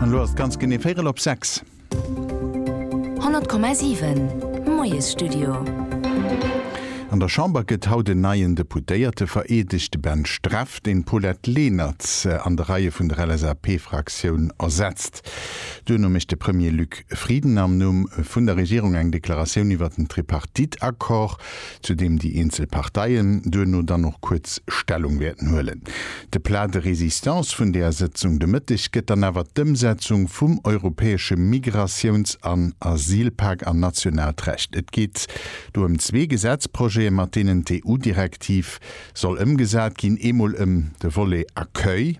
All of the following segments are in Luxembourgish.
An elo ass et ganz genee véierel op sechs. 100,7, Moiesstudio. An der Chamber gëtt haut en neien Deputéierte vereedegt. De Ben Streff, deen d'Paulette Lenert an de Reie vun der LSAP-Fraktioun ersetzt. Duerno mécht de Premier Luc Frieden am Numm vun der Regierung eng Deklaratioun iwwert den Tripartite-Accord. zu deem déi eenzel Parteien duerno dann och kuerz Stellung wäerten huelen. De Plat de résistance vun där Sëtzung de Mëtteg gëtt dann awer d'Ëmsetzung vum europäesche Migratiouns an Asylpak an nationaalt Recht. Et geet do ëm zwee Gesetzprojete, mat deenen d'EU-Direktiv soll ëmgesat ginn, eemol ëm de Volet Accueil,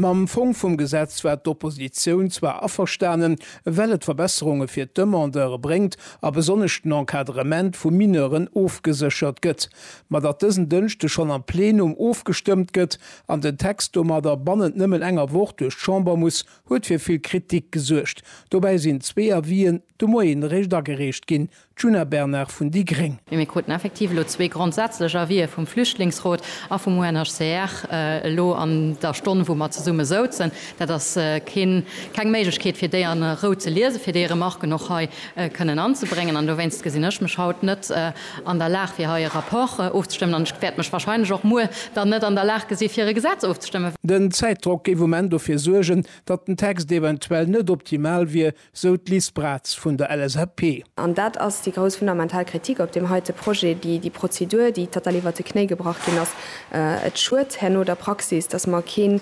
Mam Fong vum Gesetz war d'Oppositioun zwar averstanen, well et Verbesserunge fir d'Demandeure bréngt a besonnesch den Encadrement vu Mineuren ofgeséchert gëtt. Ma datt dësen Dënschde schonn am Plenum ofgestëmmt gëtt an den Text domadder bannent nëmmen enger Woch duerch d'Chamber muss, huet fir vill Kritik gesuergt. Dobäi sinn zwee Avien de Moien eréischt agereecht ginn. Djuna Bernard vun déi gréng. Mee mir kruten effektiv elo zwee grondsätzlech Avisë vum Flüchtlingsrot a vum UNHCR elo an der Stonn, wou mer zesumme souzen. Dat ass keng Méiglechkeet, fir déi a Rou ze liesen, fir déi Remarken och hei kënnen anzebréngen. An dowéinst gesinn ech mech haut net an der Lag, fir hei e Rapport ofzestëmmen. An ech wäert mech wahrscheinlech och muer dann net an der Lag gesi fir e Gesetz ofzestëmmen. Den Zäitdrock géif um Enn dofir suergen, datt den Text eventuell net optimal wier, sou d'Liz Braz vun der LSAP. An dat ass déi grouss fundamental Kritik op deem heite Projet, déi Prozedur, déi total iwwert de Knéi gebrach ginn ass. Et schued herno der Praxis, datt mer keen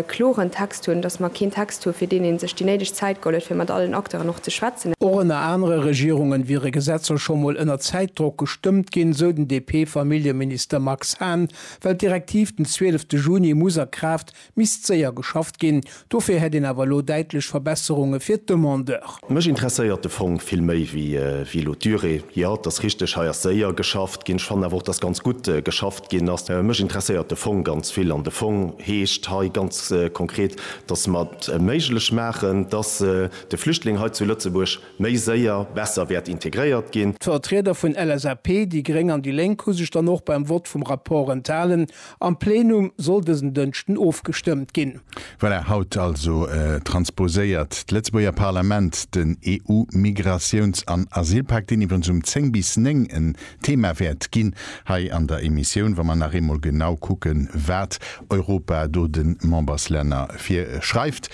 kloren Text hunn, datt mer keen Text hu fir deen ee sech déi néideg Zäit geholl huet, fir mat allen Acteuren och ze schwätzen. Och ënner anere Regierunge wiere Gesetzer scho mol ënner Zäitdrock gestëmmt ginn, sou den DP-Familljeminister Max Hahn, well d'Direktiv den 12 Juni muss a Kraaft Misst séier geschafft ginn. Dofir hätt een awer elo däitlech Verbesserunge fir d'Demandeur. Mech interesséiert de Fong vill méi wéi elo d'Durée. Jo, et ass richteg, hei ass séier geschafft ginn. Ech fannen awer och, dass ganz gutt geschafft ginn ass. Mech interesséiert de Fong ganz vill. An de Fong heescht hei ganz konkret, dass mer et méiglech maachen, dass de Flüchtling hei zu Lëtzebuerg méi séier, besser wäert integréiert ginn. D'Vertrieder vun LSAP, déi gréng an déi lénk hu sech dann och beim Vott vum Rapport enthalen. Am Plenum soll dësen Dënschden ofgestëmmt ginn. Voilà, haut also transposéiert d'Lëtzebuerger Parlament den EU-Migratiouns an Asylpak, deen iwwerens um 10 bis 9 en Thema wäert ginn hei an der Emissioun, wa mer nach eemol genau kucken, wat Europa do de Memberslänner virschreift.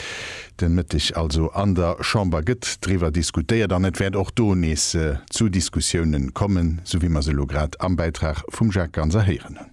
Den Mëtteg also an der Chamber gëtt driwwer diskutéiert an et wäert och do nees zu Diskussiounen kommen, sou wéi mer se elo grad am Bäitrag vum Jacques Ganser héieren hunn.